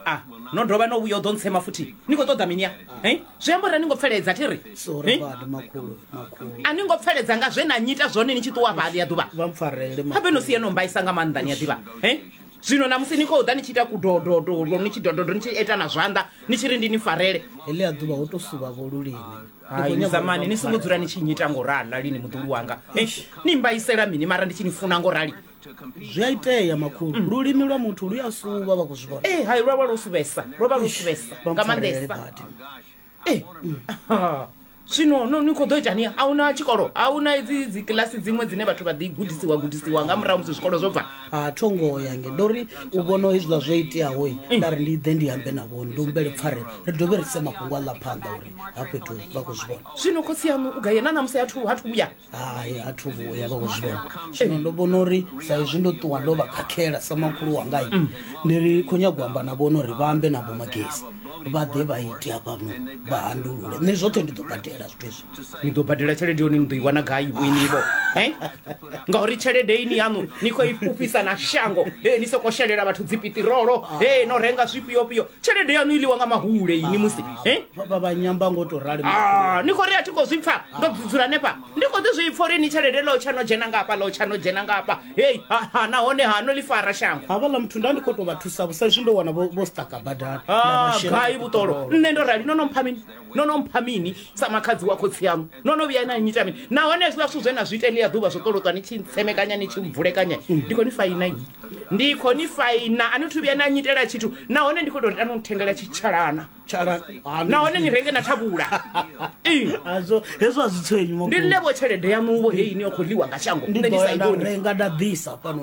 a no dovha no vhuya u ḓo ntsema futhi ni khou ṱoḓa minia zwi amba uri a ni ngo pfeledza thi ri Sorry badi makhulu makhulu. a ni ngo pfeledza nga zwe na nyita zwone ni tshi ṱuwa vha ḽia ḓuvha Vha mpfarele habe no siye no mbaisa nga maanḓa ni a ḓivha he zwino na musi ni khou ḓa ni tshi ita kudododo ni tshi dododo ni tshi eta na zwanḓa ni tshi ri ndi ni farele Heḽi a ḓuvha ho to suva vho lulimi. hai ni zamani ni songo dzula ni tshi nyita ngo rala lini muḓulu wanga Eh, ni mbaisela mini mara ndi tshi ni funa ngo rali zwi a itea makhulu mm. lulimi lwa muthu lu ya suvha vha khou zwi vhona eh, hai lwa vha lwo suvhesa lwo vha lwo suvhesa nga maanḓesa eh, mm. zwino no ni khou ḓo itani a una tshikolo a una dzi dzi kilasi dziṅwe dzine vhathu vha ḓi gudisiwa gudisiwa nga murahu musi zwikolo zwo bva a tho ngo ya nge ndo ri u vhona hezwiḽa zwo iteaho mm. nda ri ndi ḓe ndi ambe navho ndi humbele pfare ri dovhe ri se mafhungo a ḽa phanḓa uri ha fhethu vha khou zwi vhona zwino khotsi yanu u gaye na namusi hathu hathu vhuya hai a thu vhuya vha kuzwivhona zwino ndo vhona uri sa izwi ndo ṱuwa ndo vha khakhela sa makhulu wangai mm. ndi ri khou nyago amba na vhona uri vha ambe na vhomagesi vha ḓe vha ite hafha vha handulule nṋe zwoṱhe ndi ḓo badela zwithu izwi ni ḓo badela tshelede yone ni ḓo i wana gai vhoinivo eh? ngauri tshelede ini yaṋu ni khou i fhufhisa na shango e ni sokou shelela vhathu dzipitirolo e no renga zwifhiofhio tshelede yanu i ḽiwa nga mahule ini musi eh? vhanyamba ngo to rali ah, ni khou ri a thi khou zwi pfa ndo dzula nefha ndi khou ḓi zwi pfa uri ni tshelede ḽo tsha no dzhena nga hafha ḽo tsha no dzhena nga hafha hei nahone ha no ḽi fara shango havha ḽa muthu nda ndi khou tou vha thusa vhu sa izwi ndo wana vho staka badani ah, gai vhuṱolo nṋe ndo rali no no mpha mini no no mpha mini sa makhadzi wa khotsi aṋu no no vhuya na nyita mini nahone hezwiḽa zwithu zwe na zwi ita ḽia ḓuvha zwo ṱoloṱwa ni tshi ntsemekanya ni tshi mvulekanya ndi khou ni faina nyi ndi khou ni faina a ni thu vhuya na nyitela tshithu nahone ndi khou tou tano nithengela tshitshalana nahone ni renge na thavhula hazwo hezwo a zwi tswenyi ndi ḽevho tshelede yaṋuvho heyi ni yo khou ḽiwa nga shango nṋe ndi sa ioni renga nda ḓisa fhano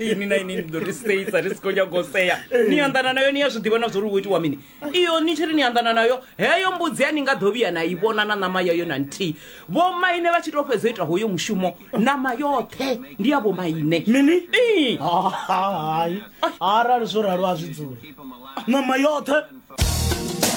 ini na ini ndi ḓo ri seisa ri si khou nyago sea ni anḓana nayo ni ya zwi ḓivha na zwo ri wo itiwa mini iyo ni tshi ri ni anḓana nayo heyo mbudzi ya ni nga ḓo vhuya na i vhona na ṋama yayo na nthihi vhomaine vha tshi tou fhedza ita hoyo mushumo ṋama yoṱhe ndi ya vhomaine mini hai arali zwo ralo a zwi dzule ṋama yoṱhe